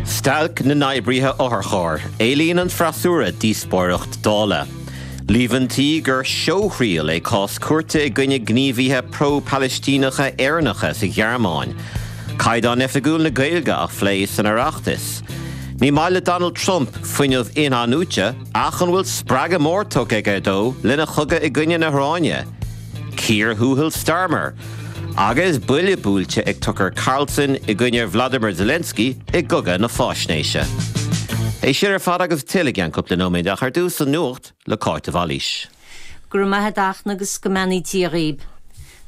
Stailc na nOibrithe Otharcharr, Éilíonn an freasúra díospóireacht Dála. Líomhaintí gur seothriail é cás cúirte i gcoinne gníomhaithe pro-Palaistíneacha Éireannacha sa Ghearmáin. Caighdeán oifigiúil na Gaeilge á phlé san Oireachtas. Ní maith le Donald Trump fuinneamh in-athnuaite ach an bhfuil spreagadh mór tugtha aige dó lena chogadh i gcoinne na hIaráine? Cíor thuathail Starmer agus buille buailte ag Tucker Carlson i gcoinne Vladimir Zelensky i gCogadh na Fáisnéise. É sin ar fad agus tuilleadh i gceann cúpla nóiméad ach ar dtús an nuacht le Cáit de Bhailís. Go raibh maith agat agus go mbeannaí Dia dhaoib.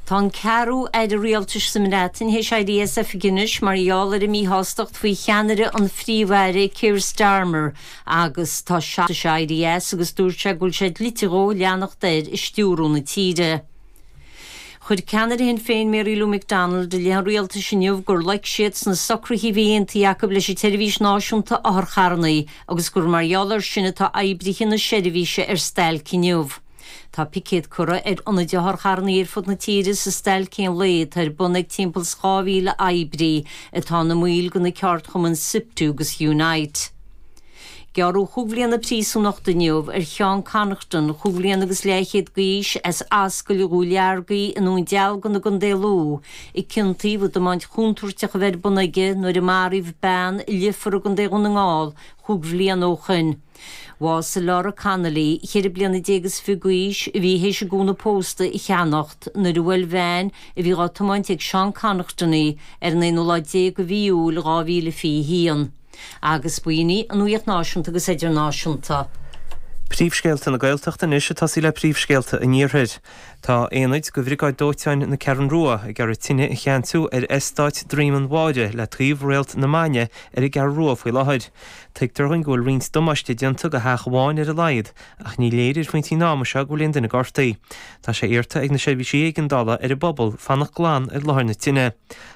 Tá an ceathrú aire rialtais sa mBreatain théis éirí as oifig anois mar gheall ar a míshástacht faoi cheannaireacht an Phríomh-Aire Keir Starmer agus tá seisear acu éirithe as agus dúirt sé go bhfuil sé dlite dhó leanacht air ag stiúrú na tíre. Chuir ceannaire Shinn Féin Mary Lou McDonald i leith an rialtais inniu gur loic siad sna socruithe a bhí aontaithe acu leis an tseirbhís náisiúnta otharcharranna agus gur mar gheall air sin atá oibrithe na seirbhíse ar stailc inniu. Tá picéad curtha ar ionaid otharcharranna ar fud na tíre sa stailc aon lae atá ar bun ag timpeall is 2,000 oibrí atá ina mbaill de na ceardchumainn Siptu agus Unite. Gearradh cúig bhliana príosúnachta inniu ar Sheán Connaughton, chúig bhliana agus leathchéad d'aois, as Ascaill Dhulargy i nDún Dealgan i gContae Lú, a ciontaíodh as tiomáint chontúirteach a bheith ar bun aige nuair a maraíodh bean i Leifear i gContae Dhún na nGall chúig bhliana ó shin. Bhásaigh Laura Connolly, ceithre bliana déag is fiche d'aois, a bhí théis a gúna pósta a cheannacht, nuair a bhuail veain a bhí á tiomáint ag Seán Connaughton í ar an aonú lá déag de mhí Iúil 2021. Agus b'in í an Nuaíocht Náisiúnta agus Idirnáisiúnta. Príomhscéalta na Gaeltachta anois ag tosaí le príomhscéalta an Iarthair. Tá aonad de Bhriogáid Dóiteáin na Ceathrún Rua ag iarraidh tine a cheansú ar eastát Dhroim an Bhaire le taobh Réalt na Maidne ar an gCeathrú Rua faoi láthair. Tuigtear dúinn go bhfuil roinnt damáiste déanta go theach amháin ar a laghad, ach ní léir ag an bpointe ama seo go bhfuil aon duine gortaithe. Tá sé iarrta ag na seirbhísí éigeandála ar an bpobal fanacht glan ar láthair na tine.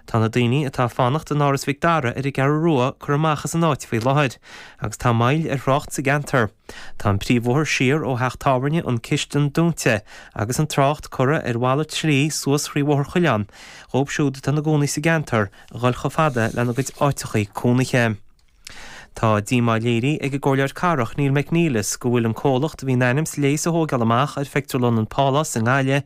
Tá na daoine atá ag fanacht in Áras Mhic Dara ar an gCeathrú Rua curtha amach as an áit faoi láthair, agus tá moill ar thrácht sa gceantar. Tá an príomhbhóthar siar ó theach tábhairne An Chistin dúnta agus an trácht curtha ar mhalairt slí suas trí Bhóthar Choileáin dhóibh siúd atá ina gcónaí sa gceantar a dhul chomh fada lena gcuid áiteachaí cónaithe. Tá díomá léirithe ag an gComhairleoir Cathrach, Níall McNelis, go bhfuil an comhlacht a bhí in ainm is léas a thóigeáil amach ar phictiúrlann an Pálás i nGaillimh,